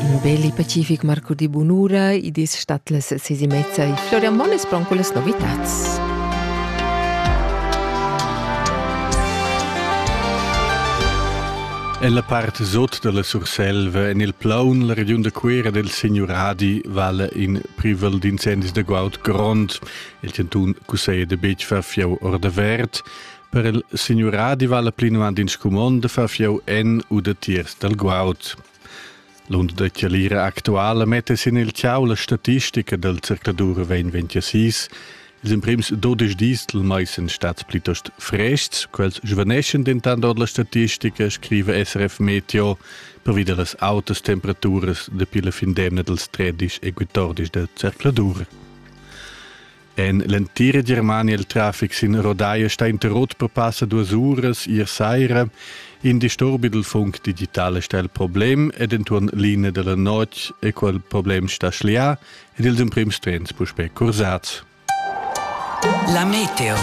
Ün bel e pacific marco di bunura, id es stat las ses e mezza e Florian Monn es pron cullas novitats. Ella part sot dalla Surselva en il plaun la regiun da Cuera del Signuradi vala in privel d'incendis da guaud grond. Il cantun cusseglia da betg far fieu or da verd. Per il signuradi vala plinuand in scumond fa fieu en u de tiers dal guaud. L'und da chialira actuala mette sin il ciau la statistica del circladur 2026, ils imprims 12 dis del mais sind stats plitost frests, quels svaneschen dentant ord la statistica, scrive SRF Meteo, pervi dellas autas temperaturas dapi la fin d'emna dels 13 e 14 del circladur. En l'entira Germania il traffic sin Rodai sta interrot per passa duas uras ier saira. In disturbi dal funk digital sta il problem ed entuorn linea della notg e quel problem sta schlià ed ils emprims trens puspè cursats. La meteo.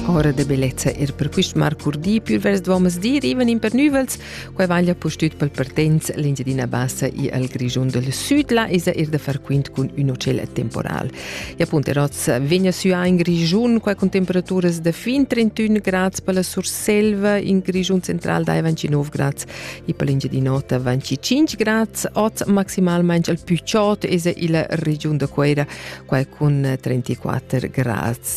Ora de bellezza er per quist marcur di, pür vers duomas di, riven in pernüvels, Quei vaglia pustüt pel partenz l'Engiadina Bassa e al Grischun del Sud, là esa er da far quint cun ün hotel temporal. E appunto Roz vegna süa in Grischun qua con temperaturas da fin 31 grads per la Surselva, in Grischun central dai 29 grads e per l'Engiadinota 25 grads. Oz maximalmente al più ciot esa illa regiun da Cuera qua con 34 grads.